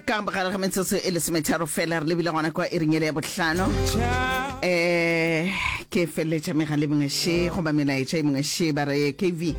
ka gare ga metsotso e lesometharo fela re lebile gona kwa e ringele ya bohlano um ke feleletša megale mengwe she goba melaetša e mengwe she ba re kv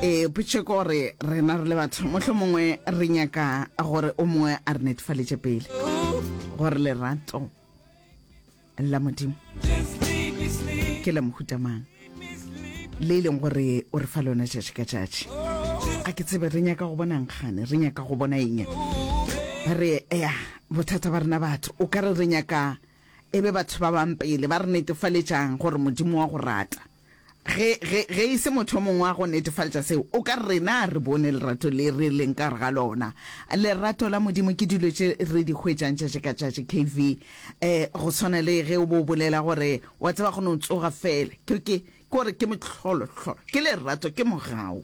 e potše ko gore rena re le batho motlho mongwe re nyaka gore o mongwe a re netefaletše pele gore lerato la modimo ke la mohuta mang le e leng gore o re fa lona tšatši ka tšatši a ke tsebe re nyaka go bona nkgane re nyaka go bona eng re ya bothata ba rena batho o ka re re nyaka e be batho ba bang pele ba re netefaletšang gore modimo wa go rata Ge, ge, ge e se motho yo mongwe a go netefaletša seo, o ka re, Rena re bone lerato le re leng ka gare ga lona. Lerato la Modimo ke dilo tše re di hwetšang tšatši ka tšatši, KV. Eh, go swana le ge o bo o bolela gore, wa tseba, go no tsoga feela. Ke, ke, ke gore ke mohlolo, hlolo. Ke lerato, ke mogau.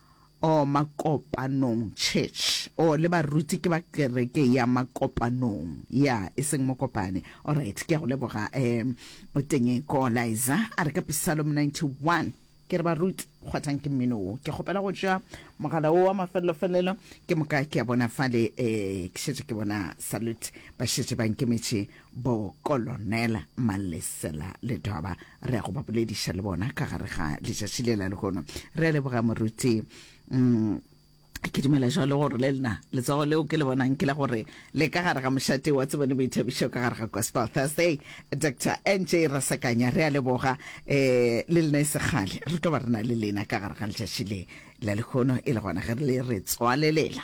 Oh, Makopanong Church. Oh, le baruti ke ba kereke ya Makopanong. Ya, e seng Mokopane. Alright, ke a go leboga, um, Tenge Koolaiza. A re ka Psalm 91. Ke re baruti, kgwathang ke mmino wo. Ke kgopela go tšwa mogala wo wa mafelelo-felelo. Ke moka ke a bona fale, um, ke šetše ke bona Salute ba šetše ba nkemetše Bo Kolonela Malesela le Doba re ya go ba bolediša le bona ka gare ga letšatši le la lehono. Re a leboga moruti mm, ke dumela jalo gore le lena letsogo leo ke le bonang ke la gore le ka gare ga mošate wa tsebone boithabišo ka gare ga gospel thursday dr nj rasakanya re a leboga um le lena e segale re tlo ba re na le lena ka gare ga letšatši le la lekgono e le gona ge re le re tswalelela